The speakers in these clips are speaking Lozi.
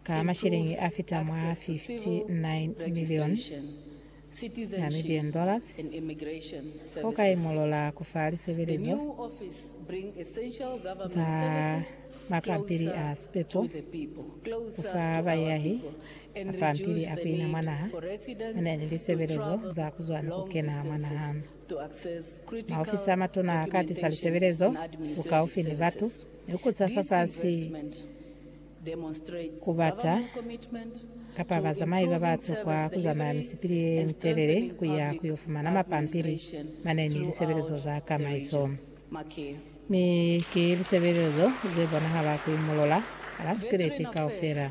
ka mashilingi a fita mwa 59 milioni Namibian dollars, ho ka imolola ku fa lisebelezo za mapampili a sipepo ku fa bayahi, mapampili a ku ina mwa naha, mane ni lisebelezo za ku zwa ni ku kena mwa naha. Maofisi a matuna a ka tisa lisebelezo bukaufi ni batu ni ku za fafasi ku bata kapa bazamai ba ba tokwa ku zamaya misipili ye mitelele ku ya ku yo fumana mapampili mane ni lisebelezo za tamaiso. Mi ki lisebelezo ze bonahala ku imolola ala sikiliti kaufela.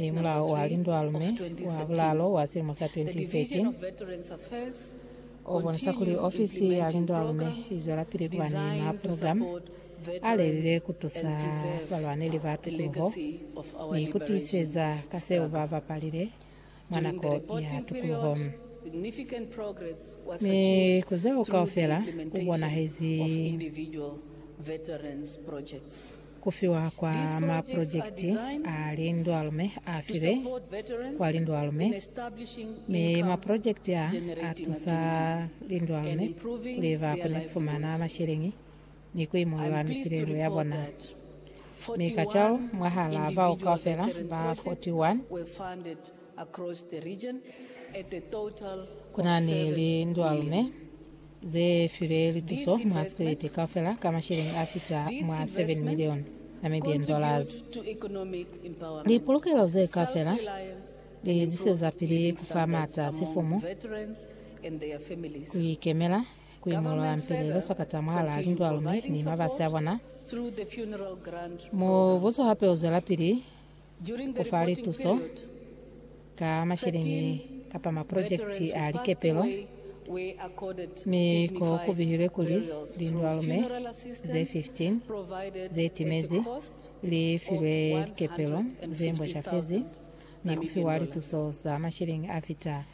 Ni mulao wa Lindualume wa Bulalo wa silimo sa 2013 o bonisa kuli ofisi ya lindualume i zwelapili ku ba ni maprogramu a lelile ku tusa balwaneli ba tukuluho ni ku tiiseza ka seo ba bapalile mwa nako ya tukuluho, mi ku zeo kaufela ku bonahezi ku fiwa kwa maprojekiti a lindwalume a filwe kwa lindwalume, mi maprojekiti a a tusa lindwalume kuli ba kone ku fumana masheleñi ni ku imulula mipilelo ya bona, mi kacwalo mwahalaa bao kaufela ba 41, ku na ni lindwalume ze filwe lituso mwa sikweliti kaufela ka masheleñi a fita mwa 7 milioni Namibian dollars. Lipolokelo ze kaufela li zwezapili ku fa maata sifumu, ku ikemela, Ku imolola mpili luswakata mwalaa lindwalu mi ni mabasi a bona, mubuso hape u zwelapili ku fa lituso ka masheleñi kapa maprojekiti a likepelo, mi ko ku bihilwe kuli lindwalume ze 15 ze timezi li filwe likepelo ze mbwashafezi ni ku fiwa lituso za masheleñi a fita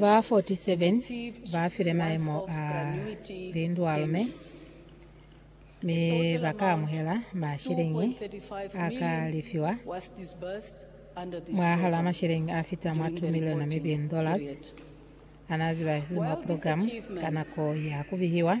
Ba 47 ba file maemo a lindwalume mi ba ka amuhela masheleñi a ka lefiwa mwahal'a masheleñi a fita mwa 2 miliona mi bin dollars a n'a zibahisizwe mwa porogilamu ka nako ya ku bihiwa.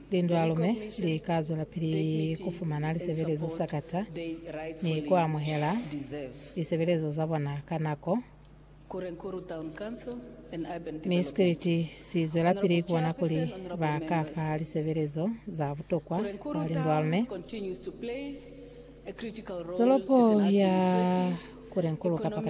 Lindwalume li ka zwelapili ku fumana lisebelezo sa kata ni ku amuhela lisebelezo za bona ka nako, mi Scility si zwelapili ku bona kuli ba ka fa lisebelezo za butokwa kwa lindwalume. Tolopo ya Kurenkuru kapa kata.